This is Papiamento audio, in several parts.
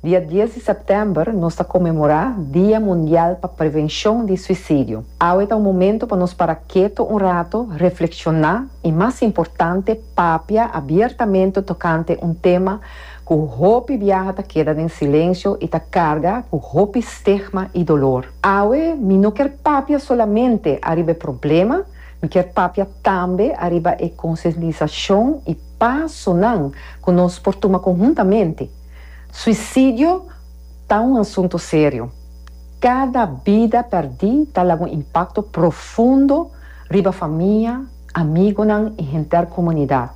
Dia dies di sèptèmber nos ta konmemorá Dia Mundial pa Prevenshon di Suisidio. Awe ta un momentu pa nos para ketu un ratu, reflekshoná i mas importante papia abiertamente tokante un tema ku hopi biaha ta keda den silensio i ta karga ku hopi stigma i dolor. Awe mi no kier papia solamente ariba e problema, mi kier papia tambe ariba e konsientisashon i pasonan ku nos por tuma konhuntamente. Suicidio ta un asunto serio. Cada bida perdi ta laga un impacto profundo riba famia, amigonan y henter comunidad.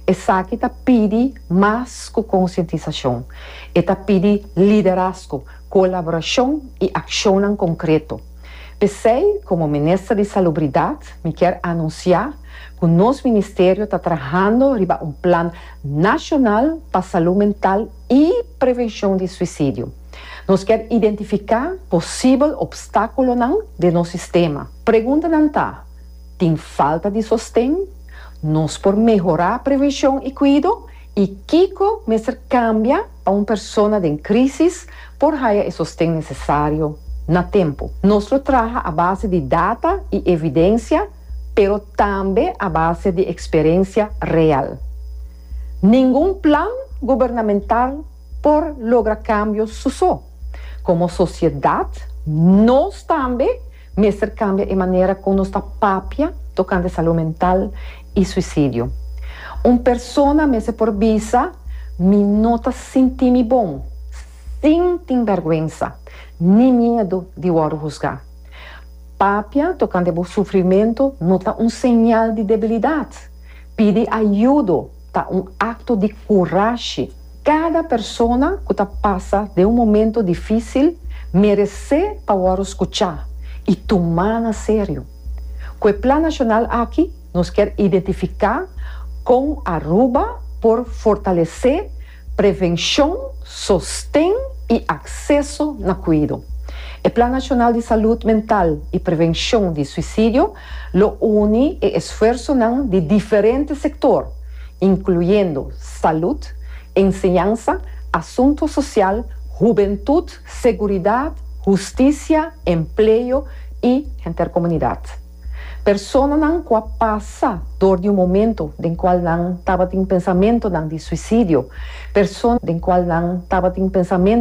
Esaki ta pidi mas cu concientisacion. E ta pidi liderazgo, colaboracion y accionnan concreto. P'esey, como Minister di Salubridad, mi kier anuncia cu nos Ministerio ta trahando riba un plan, Nacional pa Salud Mental y Prevencion di Suicidio. Nos kier identifica posibel obstaculonan den nos sistema. Preguntanan ta, Tin falta di sosten? Nos por mehora prevencion y cuido? Y kico mester cambia pa un persona den crisis por haya e sosten necesario na tempo? Nos lo traha a base di data y evidencia. pero tambe a base di experencia real. Ningun plan gubernamental por logra cambio su so. Como sociedad nos tambe mester cambia e manera cu nos ta papia tocante salud mental y suicidio. Un persona mester por bisa, Mi no ta sinti mi bon, sin tin berguensa ni miedo di wordo husga. Papia tocante bo sufrimento no ta un señal di debilidad. Pidi ayudo ta un acto di curashi. Cada persona cu ta pasa den un momento dificil merece pa worde scucha y tuma na serio. Cu e Plan Nacional aki nos kier identifica con Aruba por fortalece. Prevenshon, sosten i akseso na kuido. E Plan Nashonal di Salud Mental i Prevenshon di Suisidio lo uni e esfuersonan di diferente sektor, inkluyendo salud, enseñansa, asuntu sosial, hubentut, seguridat, hustisia, empleo i henter komunidat. Personanan ku a pasa dor di un momento den kual nan tabatin pensamentonan di suisidio, personanan ku a pasa dor di un momento den kual nan tabatin pensamentonan di suisidio,